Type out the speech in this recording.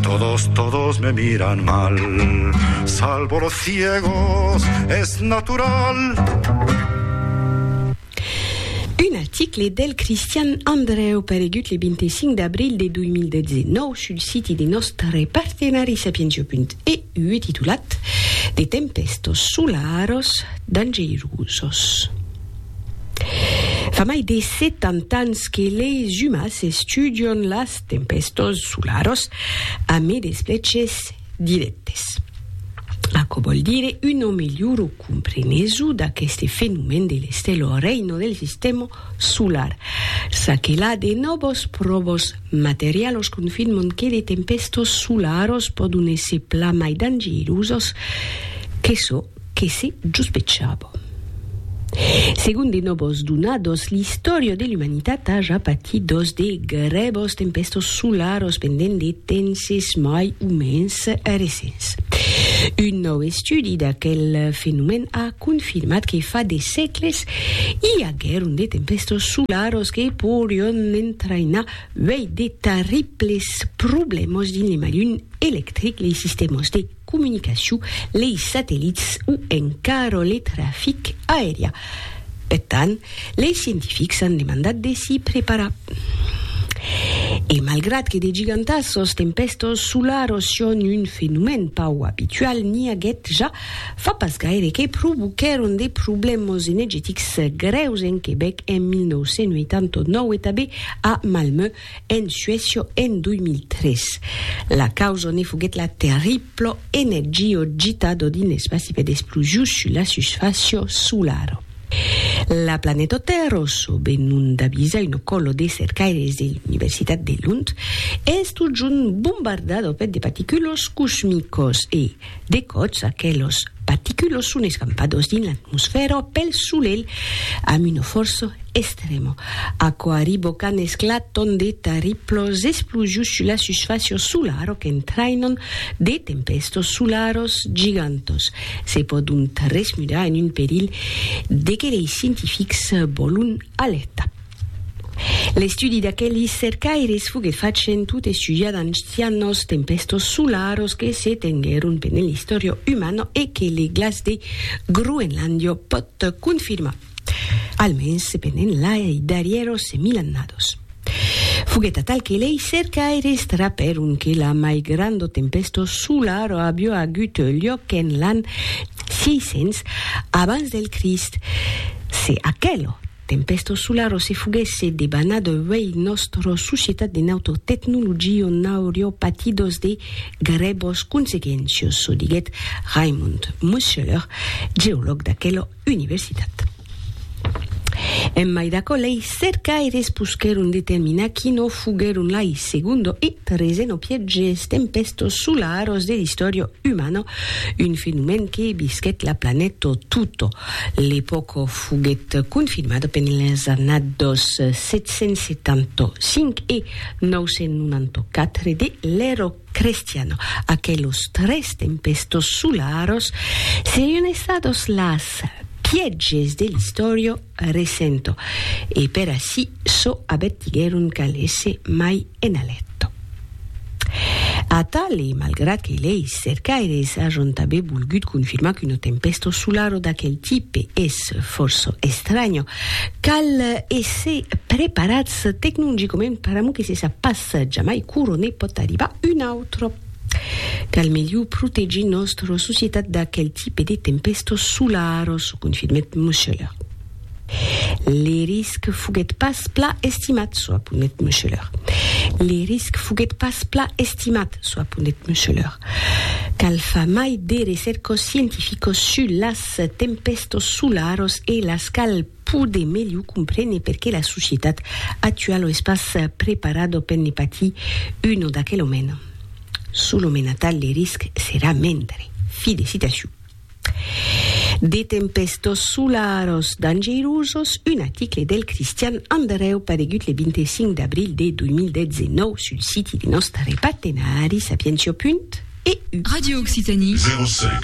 Todos, todos me miran mal Salvo los ciegos, es natural Un article del Cristian Andreu paregut le 25 d'abril de 2019 sul siti de nòstre partenari sapientia.eu titulat De tempèstos solaros dangeirosos. Fa mai de 70 ans que leis umas estudion las Tempestós solaros, a me despleches directes. Aquò vòl dire una melhora compreneso d'aqueste fenomèn de l'estèla o reina del sistèma solar. Ça que la, de nòvos pròvos materialos confirman que de tempestós solaros pòdon èsser plan mai dangerosas que çò Que se jospechava. Segon de nòbos donados, l'istòria de l'umanitat a ja patit dos de grèbos tempèstos solaros pendent de tenses mai o mens recents. Un nòu estudi d'aquel fenomèn a confirmat que fa de sègles i aguèron de tempèstos solaros que porion entrainar uèi de tarriples problèmas dins le malhum electric, lei sistèmas de comunicacion, lei satellits o encara le trafic aerià. Per tant, lei scientifics an demandat de s'i preparar. E malgrat que de gigantas sos tempèstos solaros son un fenomèn pauc abitual, n'i aguèt ja fa pas gaire que provoquèron de problèmas enegetics grèus en Quebèc en 1989 e tanben a Malmö, En Suècia en 2003, la causa ne foguèt la terribla energio gitada dins l'espaci per d'explosions sus la susfàcia solara. La planeta Tèrra, çò be non d'avisa una còla de cercaires de l'Universitat de Lund, es totjorn bombardada per de particulas cosmicas e, De còps, aquelos paticulos son escampados dins l'atmosfèra pel solelh amb una fòrça estrèma, aquò arriba qu'an esclatant de tarriplas explosions sus la susfàcia solara qu'entrainan de tempèstas solaras gigantas. Se pòdon tresmudar en un perilh de que lei scientifics vòlon alèrtar. L'estudi d'aquelis cercaires foguèt fach en tot estudiar d'ancianos tempèstos solaros que se tenguèron pendent l'istòria umana e que le glaç de Groenlàndia pòt confirmar, almens pendent lai darrièros mil annadas. Foguèt atal que lei cercaires trapèron que la mai granda tempèsta solara aviá agut luòc en l'an 600 abans del Crist, se aquela Tempestos solaros se foguèsse debanat uèi nòstro societat de nautor tecnologio n'aurió patidos de grèbos consequéncios, çò diguèt Raimund Muscheler, geològ d'aquela universitat. En mai d'aquò, lei cercaires posquèron determinar qui no foguèron lai segundo e treseno pièges tempestos solaros de l'istòria umana, un fenomèn que bisquèt la planèta tota. L'epòca Foguèt confirmada pendent las annadas 775 e 994 de l'Èra Crestiana. Aquelos tres tempèstas solaras serián estadas las pièges de l'istòria recenta e per aicí çò avertiguèron qu'alèsse mai en Aletto. Atali, malgrat que leis cercaires ajon tanben volgut confirmar qu'una tempèsta solara d'aquel tipe es fòrça estranya, cal èsser preparats tecnongicament per amor que se sap pas jamai quora ne pòt arribar una autra. Cal melhor protegir nòstra societat d'aquel tipe de tempèstas solaras, confirmèt Museler. Le risc foguèt pas pla estimat, soaponèt Meucheler. Le risc foguèt pas pla estimat, soaponèt Meucheler. Cal far mai de recèrcos scientificos sus las tempèstos solaros e las cal poder melhor comprene perqué la societat actualo es pas preparado per ne patir uno d'aquel omena. Sul omena tal le risc serà mendre. Fi de citacion. De tempèstos solaros dangeirosos, un aticle del Cristian Andrèu paregut le 25 d'abril de 2019 sul siti de nòstre partenari Sapientiò. E. Radio Occitanie. 05